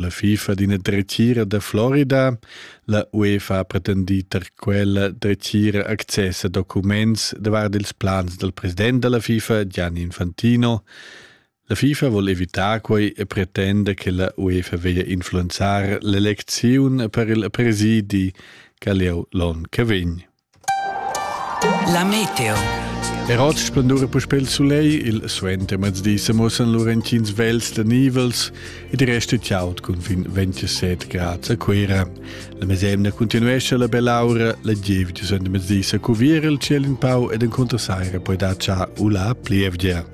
La FIFA d'ina dretgira da Florida, la UEFA ha pretendì tar quella dretgira access a documents davart ils plans dal president da la FIFA, Gianni Infantino. La FIFA vuol evitar quei e pretenda che la UEFA veglia influenzar l'elecziun per il presidi che leu l'on che vegn. La meteo. Er oz splendura puspè il sulegl, il suenter mezdi se mossen lur entins vels da nivels ed resta tjaut cun fin 27 grad a Cuira. La mesemna continuesce la bell'aura, la giev di suenter mezdi se cuvir il ciel in pau ed in contrasaira poi da cha ula plievgia.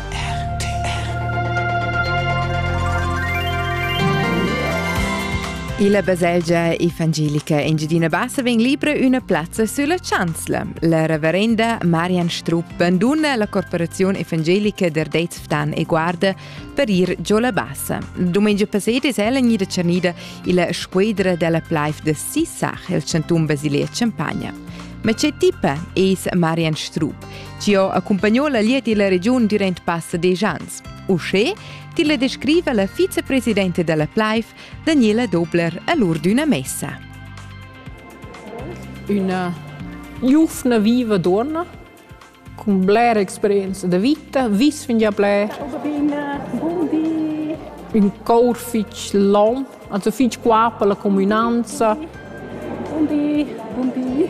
Illa baselgia evangelica Engiadina Bassa vegn libra üna plazza sulla chanzla. La reverenda Marian Strupp banduna la corporaziun evangelica d'Ardez Ftan e Guarda per ir giò la Bassa. Dumengia passat es ella gnida tschernida illa squedra della Plaif de Sissach, il chanton basilia Champagna. Ma che tipa es Marian Strupp? Ti ho accumpagno la liet illa regiun durant passa desch ans. Uschè tilla descriva la vicepresidenta dalla Pleif, Daniela Dobler, a l'ur d'üna messa. Üna giuvna viva donna con bler experienza de vita, vis fingià bler. Un cor fich long, also fich qua per la comunanza. Buondì, buondì.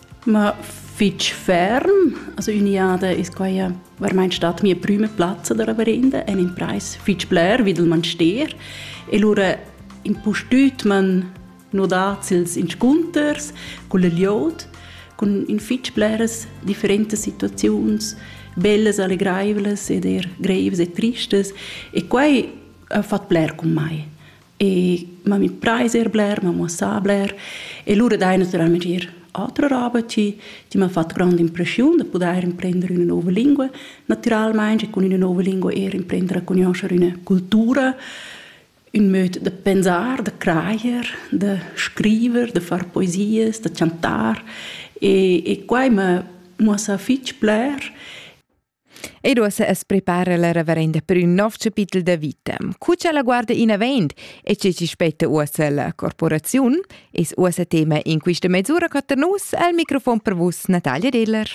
Ma fitg ferm, also üniada es quai varmaint stat mia prüma plazza da reverenda en imprais fitg bler vi dal manstier e lura impustüt m'han nodats ils inscunters cun il jod, cun in fitg bleras differentas situaziuns, bellas, allegraivlas ed eir greivas e tristas e quai ha fat bler cun mai. E ma mi preis er bler, ma mo sa bler. E lura dai naturalmente ir altra roba ti, ti m'ha fatto grande impressione de poter imprendere una nuova lingua. Naturalmente con una nuova lingua er imprendere a conoscere una cultura, un modo de pensar, de creier, de scrivere, de far poesies, de chantar. E, e qua mi ha fitg bler. Ei duossa as preparar la reverenda per ün nov chapitel da vita. Cu cha la guarda inavant e che chi spetta uossa la corporaziun, es uossa tema in quista mesura co ter nus al microfon per vus Natalia Deller.